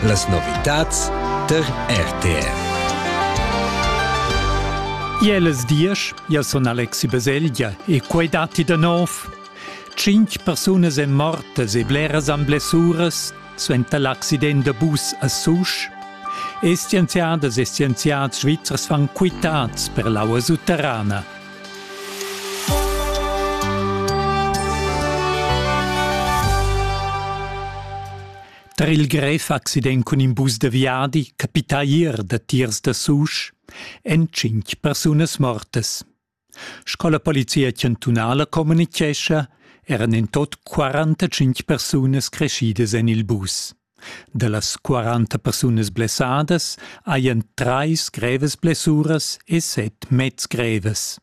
Las novitads tar RTR. Iel es diesch, ja sun Alexi Baselgia e quai datti da nov. Cinc persunas èn mortas e bleras han blessuras suenter l'accident da bus a Susch. E scienziadas e scienziads svizzers fan quitads per l'aua sutterrana. Tar il grev accident cun in bus da viadi capita ier da tiers da Susch èn cinq persunas mortas. Sco la polizia chantunala communitgescha, eran en tot 45 persunas creschidas en il bus. Dallas quaranta persunas blessadas hajan trais grevas blessuras e set meds grevas.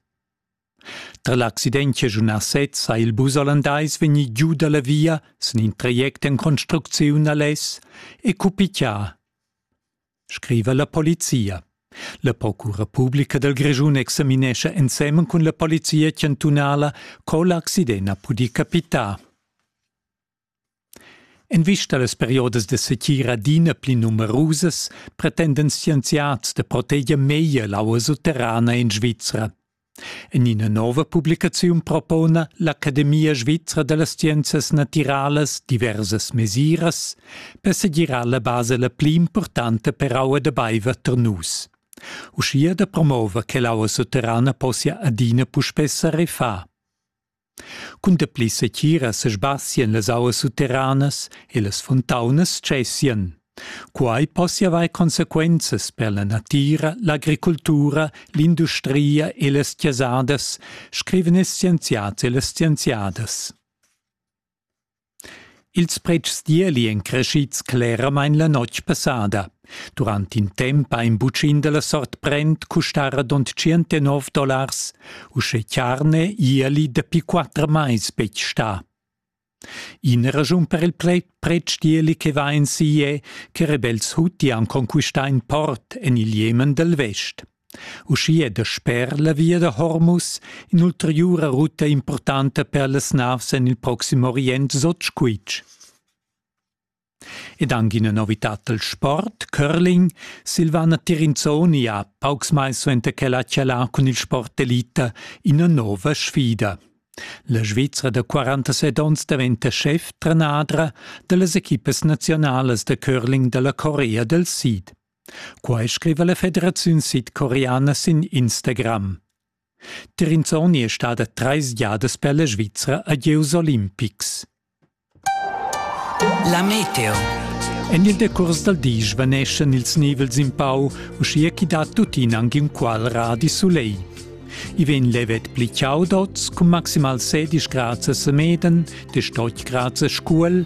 Tra l'accident chaschunà sez ha il bus olandais vegnì giu da la via sin in traject en construcziun a lez e cupichà, scriva la polizia. La procura publica dal Grischun examinescha ensemen cun la polizia chantunala co l'accident ha pudì capitar. En vista las periodas da setgira adina pli numerusas pretenden scienziads da proteger meglier l'aua sutterrana en Svizra. En ina nova publicaziun propona l'Academia svizra da las scienzas natiralas diversas mesiras per segirar la basa la pli importanta per aua da baiver tar nus. Uschia da promover che l'aua sutterrana possia adina puspè sa refar. Cun dapli setgira sesbassien las auas sutteranas e las fontaunas tschessien. Quai possia avair consequenzas per la natira, l'agricultura, l'industria e las chasadas, scrivan ils scienziads e las scienziadas. Ils pretschs d'ieli èn creschids cleramain la notg passada. Durant in temp ha in butschin da la sort Brent custà radund tschientanov dollars, uschè charne ieli dapi quatter mais betg stà. Ina raschun per il pretsch d'ieli che va en si è che rebels huti han conquistà in port en il Jemen dal vest. Uschia è dasper la via da Hormus in'ulteriura ruta impurtanta per las navs en il Proxim Orient Sotgsquitsch. Ed anche una novità del sport, curling, Silvana Tirinzoni ha paucs mai suenter che ha chalà cun il sport elita ina nova sfida. La Svizra da 47 onns daventa chef-trenadra da las equipas nazionalas da curling della Corea del Sid. Quai scriva la Federaziun sidcoreana sin Instagram. Trinzoni è stada trais giadas per la Svizra a gieus olimpics. La meteo. En il decurs dal di svaneschan ils nivels in pau, uschia ch'i dat tuttina anche un qualra di soleil. I vegn levet pli chaudots, cun maximal 16 grads a Semeden, de Stochgrad a Scuol